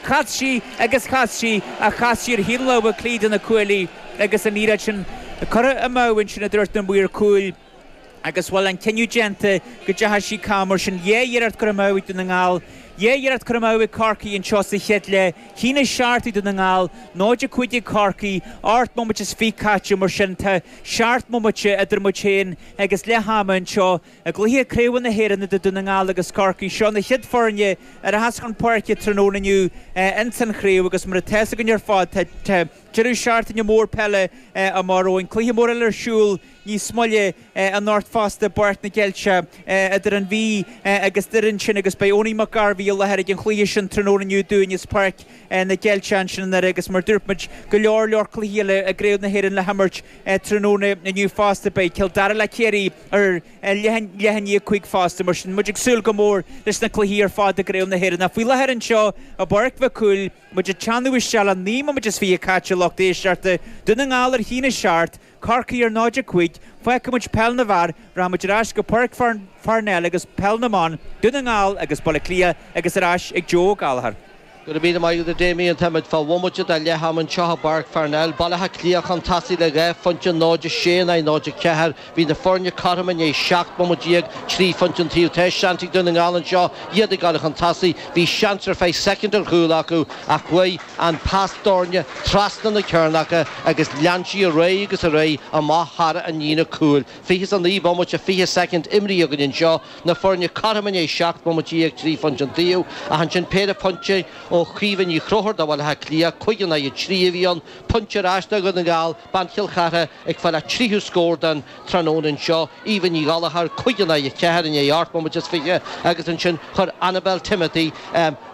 Chas sí agus chas sí ach chas sí ar thaobh na láimhe clí de na cuaillí agus an iarracht sin curtha amú ansin a dúirt na maoir cúil agus bhuel, an cinneadh déanta go dteachaigh sí cam mar sin. Dhá iarracht curtha amú ag Dún na nGall, dhá iarracht curtha amú ag Corcaigh anseo sa chéad leath. A haon a seacht ag Dún na nGall, 0-5 ag Corcaigh, ocht mbomaite is fiche caite mar sin. Tá seacht mbomaite idir muid féin agus leath ama anseo. I gcluiche craoibhe na hÉireann idir Dún na nGall agus Corcaigh, seo na chéad foirne a rachas chun páirce tráthnóna inniu ins an chraobh agus mar atá a fhios againn ar fad tá deireadh seachtaine mór peile amach romhainn. Cluiche mór eile ar siúl níos moille anocht fosta i bPáirc na gCeilte idir an Mhí agus Doire ansin agus beidh Owenie Mac Gairbheith i láthair ag an chluiche sin tráthnóna inniu dúinn as Páirc na gCeilte ansin i nDoire agus mar a dúirt muid go leor leor cluichí eile i gcraobh na hÉireann le himirt tráthnóna inniu fosta. Beidh Cill Dara le Ciarraí. ar a leath i ndiaidh a cúig fosta. Mar sin, muid ag súil go mór leis na cluichí ar fad i gCraobh na hÉireann. Ach faoi láthair anseo i bPáirc Mhic Cumhaill, muid ag teannadh isteach le naoi mbomaite is fiche caite, lucht éisteachta, Dún na nGall ar a haon a seacht, Corcaigh ar 0, 5, fágfaidh muid peil na bhfear, rachaidh muid ar ais go Páirc Pharnell agus peil na mban, Dún na nGall agus Baile Átha Cliath agus ar ais ag Joe Ó Gallchóir. Gura míle maith agat a Damien, táimid fá bhomaite de leath-am anseo i bPáirc Pharnell, Baile Átha Cliath, chun tosaigh le 2 phointe, 0-6 in aghaidh 0-4. Bhí na foirne cothrom i ndiaidh 17 bomaite, 3 phointe an taobh. Tá seans ag Dún na nGall anseo iad ag gabháil chun tosaigh, bhí seans ar feadh soicind ar chúl acu ach chuaigh an pas doirn trasna na cearnacha agus lean sí ar aghaidh agus ar aghaidh amach thar an líne cúil. 29 bomaite, 20 soicind imrithe againn anseo. na foirne cothrom i ndiaidh seacht mbomaite déag, trí phointe an taobh ach ansin péire pointe ó Chaoimhe Ní Chonchúir do Bhaile Átha Cliath, cúig in aghaidh a trí a bhí ann, pointe ar ais do Dhún na nGall, bean Chill Chartha ag fáil a tríú scór den tráthnóna anseo, Eva Ní Ghallchóir, cúig in aghaidh a ceathair i ndiaidh ocht mbomaite is fiche agus ansin chuir Annabelle Timothy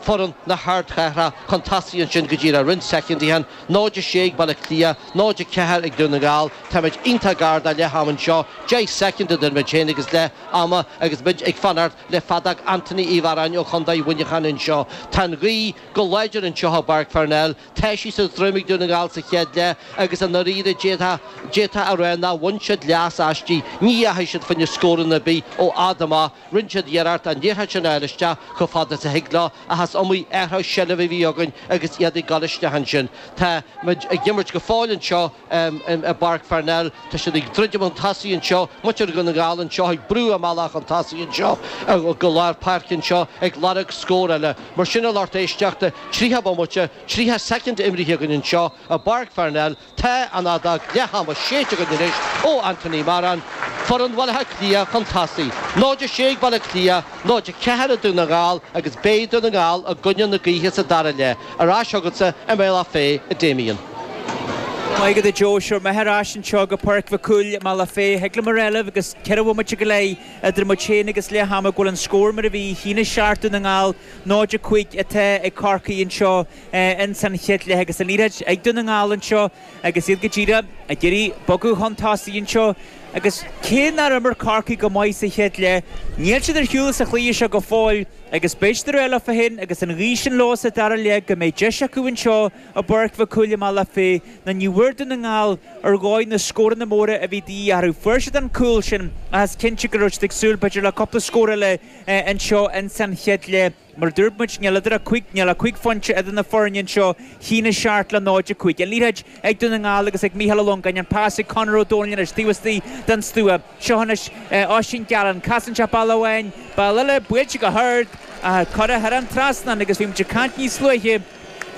foireann na hArdchathrach chun tosaigh ansin go díreach roinnt soicindí ó shin 0-6 ag Baile Átha Cliath, 0-4 ag Dún na nGall, táimid iontach gar do leath-am anseo, deich soicind idir muid féin agus leath ama agus muid ag fanacht le feadóg Anthony Uí Mhearáin ó Chontae Mhuineacháin anseo. Tá an ghaoth go láidir anseo i bPáirc Pharnell, tá sí sa droim ag Dún na nGall sa chéad leath agus i ndáiríre d'fhéadfá a rá nár bhain siad leas aisti, ní dheachaigh siad fá choinne scóranna ar bith ó fhad amach. Rinne siad iarracht an liathróid sin a fháil isteach chomh fada is a thig leo, ach is iomaí athrú seilbhe a bhí againn agus iad ag dul isteach ansin. Tá muid ag imirt go fóill anseo i bPáirc Pharnell, tá siad ag druidim chun tosaigh anseo, muintir Dhún na nGall anseo ag brú a mbealach chun tosaigh anseo go lár páirce anseo, ag lorg scór eile. Mar sin, a lucht éisteachta, tríocha bomaite, tríocha soicind imrithe againn anseo i bPáirc Pharnell, Tá an fheadóg leath ama séidte againn anois ó Anthony Moran, foireann Bhaile Átha Cliath chun tosaigh, 0-6 ag Baile Átha Cliath, 0-4 ag Dún na nGall agus beidh Dún na nGall i gcoinne na gaoithe sa dara leath. Ar ais chugatsa i mBealach Féich, a Damien. Maith agat a Joe, seo muid ar ais anseo go Páirc Mhic Cumhaill i mBealach Féich. Thig liom a rá libh, agus ceithre bhomaite go leith idir muid féin agus leath ama, go bhfuil an scór mar a bhí. 1-7 Dún na nGall, 0-5 atá ag Corcaigh anseo. ins an chéad leath agus an liathróid ag Dún na nGall anseo agus iad go díreach ag iarraidh bogadh chun tosaigh anseo agus cé nár imir Corcaigh go maith sa chéad leath níl siad ar shiúl as an chluiche seo go fóill agus beidh siad ag rá leofa féin agus an ghaoth sin leo sa dara leath go mbeidh deis acu anseo i bPáirc Mhic Cumhaill i mBealach Féich nó ní bhfuair Dún na nGall ar dhóigh na scóranna móra a bhí de dhíth orthu fuair siad an cúl sin ach is cinnte go raibh siad ag súil b'fhéidir le cúpla scór eile anseo ins an chéad leath. Mar a dúirt muid, níl idir 5, níl ach cúig phointe idir na foirne anseo, 1-7 le 0-5. An liathróid ag Dún na nGall agus ag Micheál Ó Longáin, an pas ag Conor Ó Domhnaill anois taobh istigh den stua. Seo anois Oisín Gallen, casann sé bealach amháin, bealach eile, buailte go hard, curtha thar an trasnán agus bhí muid ag caint níos luaithe,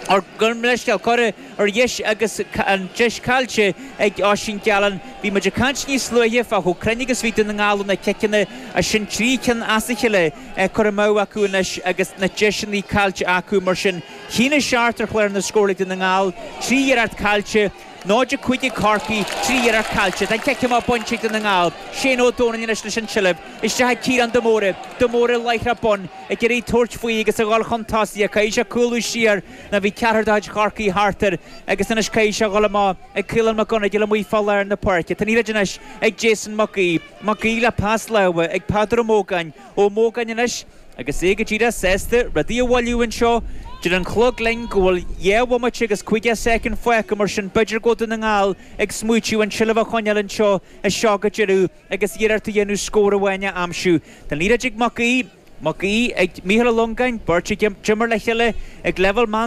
ar, gabh mo leithscéal, curtha ar dheis agus an deis caillte ag Oisín Gallen. Bhí muid ag caint níos luaithe fá chomh cruinn agus a bhí Dún na nGall ó na ciceanna, ach sin trí cinn as a cheile curtha amú acu anois agus na deiseanna caillte acu. Mar sin, 1-7 ar chlár na scórála ag Dún na nGall, trí iarracht caillte, 0-5 ag Corcaigh, trí iarracht caillte, tá an cic amach bainte ag Dún na nGall, Shane Ó Domhnaill anois leis an tseilbh, isteach ag Ciarán de Mórdha, de Mórdha láithreach bonn, ag iarraidh tabhairt faoi agus a dhul chun tosaigh ach caithfidh sé cúlú siar nó bhí ceathrar de chuid Chorcaí thart air agus anois caithfidh sé a dhul amach ag Caolán McGonagle amuigh fá lár na páirce. Tá an liathróid anois ag Jason Mac Aoidh. Mac Aoidh le pas láimhe ag Peadar Ó Mógáin. Ó Mógáin anois. Agus é go díreach sásta rudaí a mhoilliú anseo, deir an chlog linn go bhfuil dhá bhomaite agus caoga soicind fágtha, mar sin b'fhéidir go bhfuil Dún na nGall ag smaoitiú an tseilbh a choinneáil anseo as seo go deireadh agus iarracht a dhéanamh scór amháin a aimsiú. Tá an liathróid ag Mac Aoidh, Mac Aoidh ag Micheál Ó Longáin, beirt a d'imir le chéile ag leibhéal meán